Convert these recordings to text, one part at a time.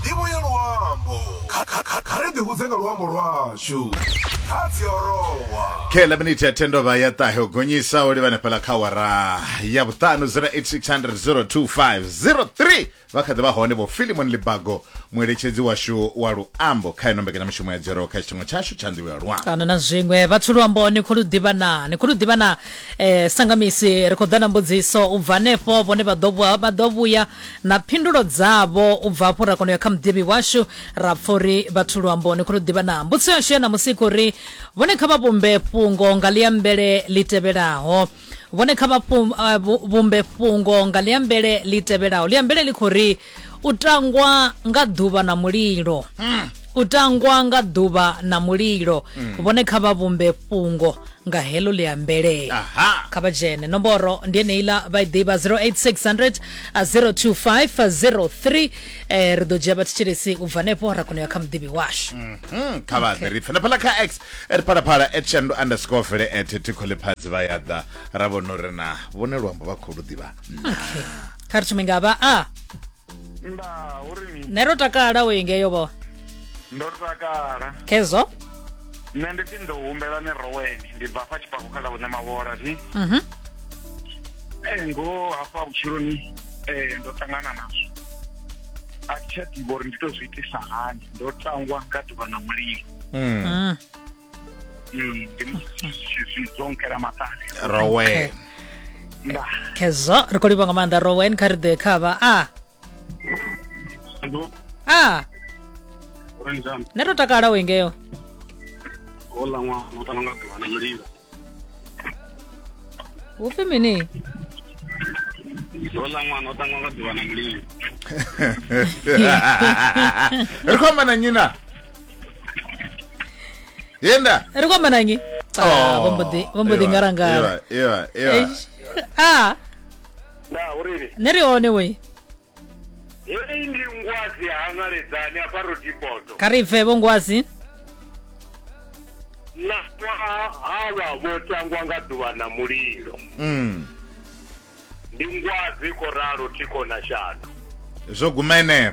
ndivho ya luambo Kha- kha- kha- kha ri ḓihudze nga luambo lwashu kha dziorowa khe 11 minute ya tendova ya ṱahe u gonyisa o livhana fhala kha wara ya vhuṱanu 0860025003 vha kha ḓi vha hone vho filimon libago mueletshedzi washu wa luambo kha ino mbekanyamushumo ya dzero kha tshiṱingo tshashu tsha ndivho ya luambo kana na zwiṅwe vhathu luamboni khou lu ḓivha na ni khou lu ḓivha na eh sangamisi ri khou ḓa na mbudziso u bva hanefho vhone vha ḓo vha ḓo vhuya na phindulo dzavho u bva afho ra kona u ya kha muḓivhi washu ra pfha uri vhathu luambo ni khou lu ḓivha na mbudziso yashu ya ṋamusi khou ri vhone kha vha vhumbe fhungo nga ḽiambele ḽi tevhelaho vhone kha vha eh, vhumbe fhungo nga ḽiambele ḽi tevhelaho ḽiambele ḽi khou ri u tangwa nga ḓuvha na mulilo hmm. u tangwa nga ḓuvha na mulilo hmm. vhone kha vha vhumbe fhungo nga heḽo ḽi ambelea kha vha dzhene nomboro ndi eneiḽa vha i ḓivha 08600 02503 eh, ri ḓo dzhia vhathetshelesi u bva hanefho ra kona u ya kha muḓivhi washu mhm, kha vha ḓe ri pfela phala kha x ri phalaphala at shandu underscore fele at tikholephatsi vha ya ḓa ra vhona uri na vhone luambo vha khou lu ḓivha kha ri thome nga vha a nda uri ni nṋe ro takala u ingeyo vho ndo takala khezwo nṋe ndi pfi ndo humbela ni roweni ndi bva fha tshipako kha ḽa vhune mavhola zwi Mhm. Eh, ngoho hafha vhutshiloni eh, ndo ṱangana nazwo a thi tsha ḓivha uri ndi to zwi itisa hani ndo tangwa nga ḓuvha na mulilo Mm. Mm. Mm, rowen khezwo ri khou livha nga maanḓa rowen kha ri ḓe khavha a a ne to takala u ingeo hu pfi mini hola ṅwana o ṱangwa nga ḓuvha na mulilo ri khou amba na nyina yenda ri kwamba nanyi Ah, vho mbo ḓi- vho mbo ḓi ngarangara iwa iwa Eish. a nda uriri ne ri hone we heyi ndi ngwazi hangaledzani hafha rodipoto kha ri bve vho ngwazi na ṅwaha havha vho tangwa nga ḓuvha na mulilo Mm. ndi ngwazi khoralo thikho na shano zwo guma eneo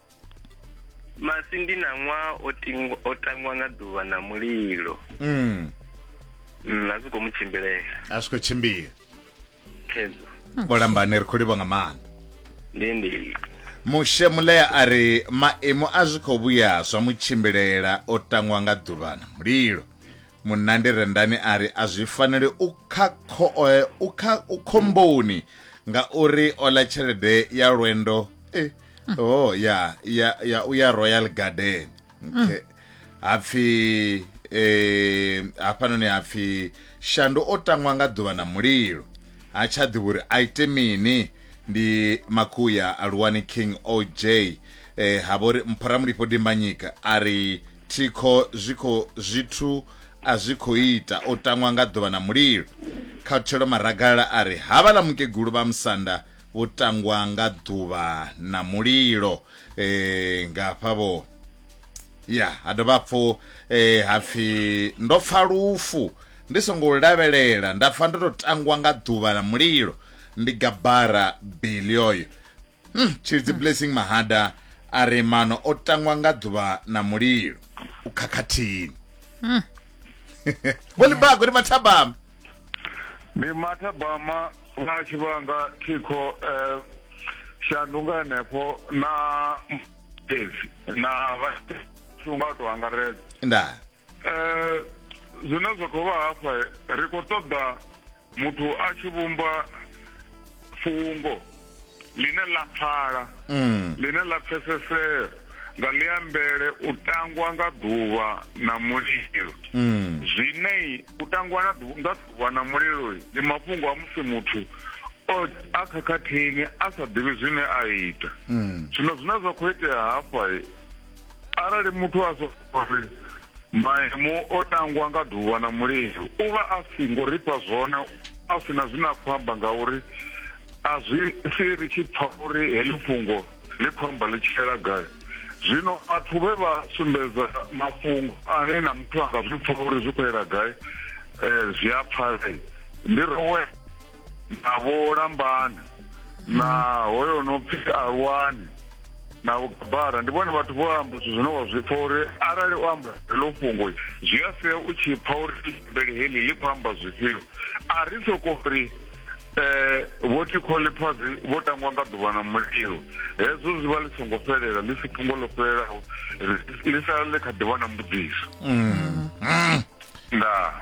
masi ndi na ṅwaha o tingwa o tangwa nga ḓuvha na mulilo mm. mm, a zwi khou mu tshimbilela a zwi khou tshimbila khedzo vho lambane ri khou livha nga maanḓa ndi ndi mushe mulea a ri maimo a zwi khou vhuya zwa mu tshimbilela o tangwa nga ḓuvha na mulilo munandi rendani a ri a zwi faneli u kha kho- eh, u kha- u khomboni ngauri o ḽa tshelede ya lwendo eh, oh ya ya ya u ya royal garden okay. hapfi eh, hafhanoni hapfi shandu o tangwa nga ḓuvha na mulilo ha tsha ḓivha uri a ite mini ndi makuya aluwani king oj eh, ha vhori mphoramulifho dimbanyika a ri thikho zwikho zwithu a zwi khou ita o tangwa nga ḓuvha na mulilo khathelo maragalala a ri havhaḽa mukegulu vha musanda u tangwa nga ḓuvha na mulilo eh, nga hafhavho ya ha dovha hapfu eh, ha pfi ndo pfa lufu ndi songo lu lavhelela nda pfa ndo to tangwa nga ḓuvha na mulilo ndi gabara bili oyo hmm, tshilidzi blessing mahada a ri mano o tangwa nga ḓuvha na mulilo u khakhathini vholibago ri mathabama ndi mathabama na tshi vhanga thikho um shandunga henefho na tezi na vhashunga to angaredza ndaa um zwine zwa khou vha hafha ri khou ṱoḓa muthu a tshi vhumba fungo ḽine ḽa pfala mm. ḽine ḽa pfesesea nga ḽiambele u tangwa nga ḓuvha na mulilo mm. zwine u tangwa nga ḓuvha na mulilo ndi mafhungo a musi muthu a khakhathini a sa ḓivhi zwine a ita mm. zwino zwine zwa khou itea hafha arali muthu a sori maimo o tangwa nga ḓuvha na mulilo u vha a si ngo rifha zwone a si na zwine a khou amba ngauri a zwi si ri tshi pfa uri heḽi fhungo ḽi khou amba ḽi tshela gai zwino vhathu vhe vha sumbedza mafhungo ane na muthu a nga zwi pfa uri zwi khou yela gai um zwi a pfalei ndi rowe na vho lambani na hoyo no pfi alwani na vhugabara ndi vhone vhathu vho amba zwithu zwine wa zwi pfa uri arali u amba heḽo fhungo zwi a sia u tshi pfa uri bele heḽi ḽi khou amba zwifhio a ri soko ri eh vho thikhole phazi vho tangwa nga ḓuvha na mulilo hezwo zwi vha ḽi songo fhelela ḽi si fhungo ḽo fhelelaho ḽi sala ḽi kha ḓivha na mbudziso mm. Mm. ndaa